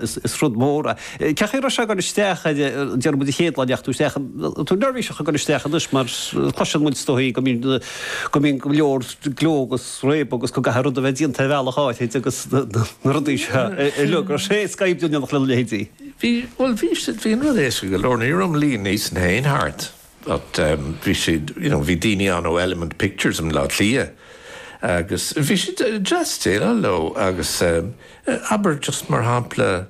Is rud mór é. Ceapaim go raibh sé ag gabháil isteach air, déarfaidh muid an chéad lá a ndeachaigh tú isteach, tú neirbhíseach ag gabháil isteach ann anois mar cloiseann muid is dóigh go mbíonn, go mbíonn go leor gleo agus réabadh agus go gcaithfidh rud a bheith déanta ar bhealach áithrid agus na rudaí seo uilig, raibh sé éasca oibriú in éineacht lena leithéidí? Bhí, bhuel bhí, bhí an rud éasca go leor, ní raibh an líon níos na haon thart. but bhí siad, you know, bhí daoine ann ó Element Pictures i mBleá Cliath agus bhí siad deas déileáil leo agus abair, just mar shampla,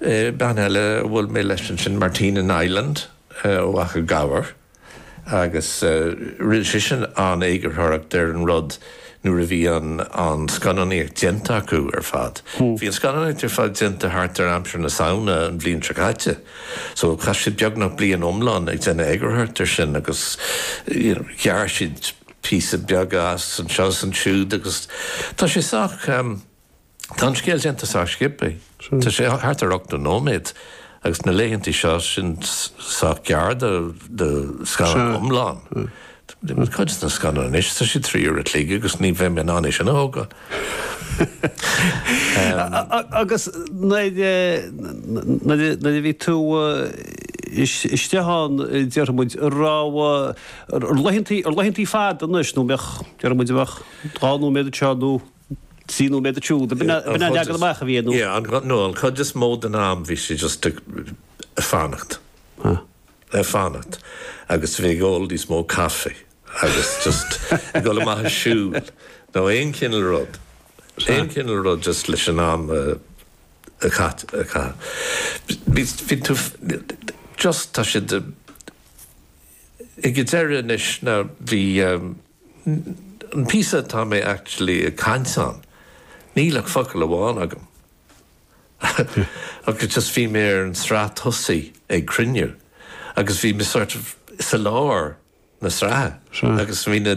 bean eile a bhuail mé leis ansin, Martina Niland ó Achadh Gabhar agus rinne sise an eagarthóireacht ar an rud. nuair a bhí an an scannánaíocht déanta acu ar fad. Bhí an scannánaíocht ar fad déanta thart ar aimsir na Samhna an bhliain seo caite. So chaith siad beagnach bliain iomlán ag déanamh eagarthóireacht air sin agus you know ghearr siad píosaí beaga as anseo is ansiúd agus tá sé sách Tá an scéal déanta sách simplí. Tá sé thart ar ochtó nóiméad agus na laethantaí seo, sin sách gearr do scannán iomlán. Cuid de na scannáin anois, tá siad trí uair a chloig agus ní bheadh mé in ann é sin a thógáil. Agus nuair a bhí tú isteach ann, déarfaidh muid, ar laethantaí fada anois, nó déarfaidh muid a bheadh dhá nóiméad anseo nó. Trí nóiméad ansiúd. B'in an leagan amach a bhí air, nó? No, an chuid is mó den am bhí sé just ag fanacht. Ag fanacht agus bheith ag ól níos mó caife agus just ag dul amach ag siúl nó aon chineál rud, aon chineál rud just leis an am a chaitheamh. Bhí tú just, tá siad ag an deireadh anois, bhí. an píosa atá mé actually ag caint ann, níl ach focal amháin agam agus just bhí mé ar an sraith tosaigh ag cruinniú agus bhí mé sort of i lár na sraithe agus bhí na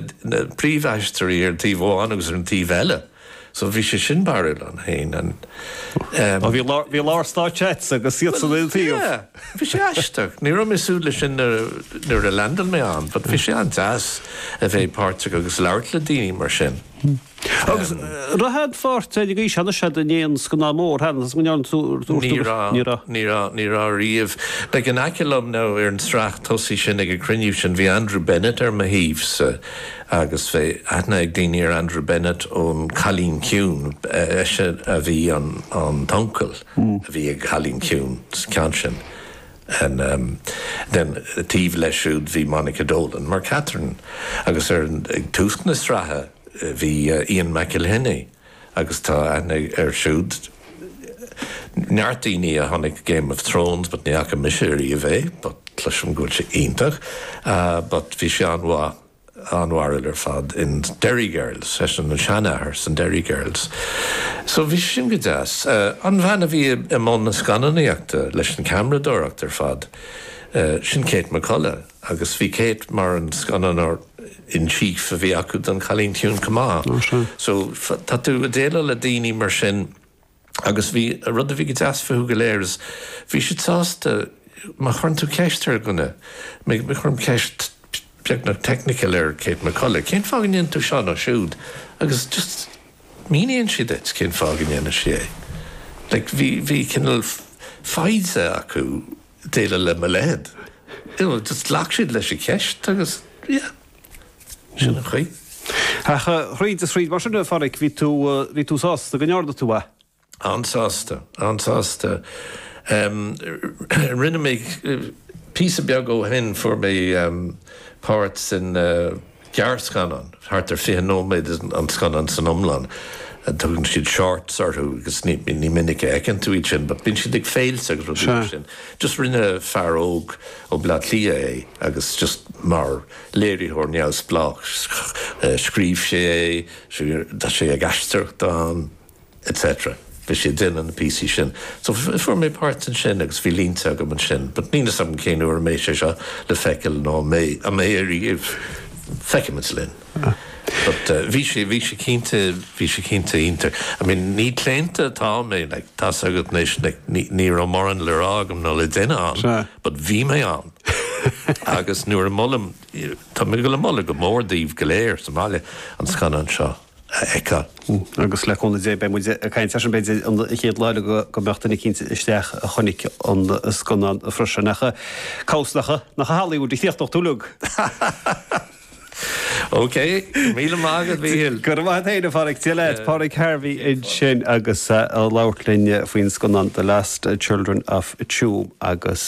príomhaisteoirí ar an taobh amháin agus ar an taobh eile. So bhí sé sin barúil ann féin and Ó bhí lá bhí lár stáitse agat agus iadsan ar an taobh. Well yeah bhí sé aisteach. Ní raibh mé ag súil leis sin nuair nuair a landail mé ann but bhí sé an-deas a bheith páirteach agus labhairt le daoine mar sin. Agus raibh aon pháirt ar an gcaoi sin agatsa in aon scannán mór cheana is go ndearna tú tú Ní raibh Ní raibh. Ní raibh Ní raibh riamh. Bhí in aice liom now ar an sraith tosaigh sin ag an cruinniú sin bhí Andrew Bennett ar mo thaobhsa agus bheadh aithne ag daoine ar Andrew Bennett ón Cailín Ciúin, b'eisean a bhí an an t-uncail a bhí ag an Cailín Ciúin sa gceann sin, and um then taobh leis siúd bhí Monica Dolan mar Catherine agus ar an, ag tús na sraithe bhí Ian McElhinney agus tá aithne air siúd, neart daoine a tháinig go Game of Thrones but ní fhaca mise ariamh é but cloisim go bhfuil sé iontach, ah but bhí sé an-mhaith. an-bharrúil ar fad in Derry Girls, seisean an seanathair sa Derry Girls. So bhí sé sin go deas. An bhean a bhí i mbun na scannánaíochta leis an ceamradóireacht ar fad, sin Kate McCullough agus bhí Kate mar an scannánóir in chief a bhí acu don Cailín Ciúin chomh maith. So tá tú ag déileáil le daoine mar sin. agus bhí rud a bhí go deas fúthu go léir is bhí siad sásta má chuireann tú ceist ar dhuine, má chuirim ceist beagnach technical ar Kate McCullough, cén fáth go ndéanann tú seo nó siúd agus just míníonn sí duit cén fáth go ndéanann sí é. Like bhí, bhí cineál foighde acu déileáil le mo leithead, you know just ghlac siad leis an cheist agus yeah. Sin an chaoi. Ach thríd is thríd mar sin, a Pháraic, bhí tú, bhí tú sásta go ndearna tú é. An-sásta, an-sásta. Rinne mé, píosa beag ó shin fuair mé páirt sa ngearrscannán, thart ar fiche nóiméad an scannán san iomlán, tugann siad shorts orthu agus ní minic a fheiceann tú iad sin but bíonn siad ag féilte agus rudaí mar sin. Just rinne fear óg, ó Bhleá Cliath é agus just mar léiritheoir neamhspleách scríobh sé é, tá sé ag aisteoireacht ann etc. Bhí sé ag déanamh na píosaí sin. So fuair mé páirt ansin agus bhí línte agam ansin but níl 'fhios agam cén uair a mbeidh sé seo le feiceáil nó an mbeidh, an mbeidh ariamh, feicfimid linn. But bhí sé, bhí sé cinnte, bhí sé cinnte iontach. I mean, ní claonta atá mé, like, tá 's agat anois, like, ní, ní raibh mórán le rá agam nó le déanamh ann but bhí mé ann agus nuair a mholaim, tá mé ag moladh go mór daoibh go léir sa mbaile an scannán seo a fheiceáil. Agus le cúnamh Dé beidh muid ag caint air sin b'fhéidir an chéad lá eile go, go mbeadh duine eicínt isteach a chonaic an scannán freisin. Ach, cá bhfios nach i Hollywood a chríochnóidh tú! OK, míle maith agat a Mhichíl. Go raibh maith a't fhéin a Pháraic. Dia leat. Páraic Harvey ansin agus é ag labhairt linn faoin scannán The Lost Children of Tuam agus.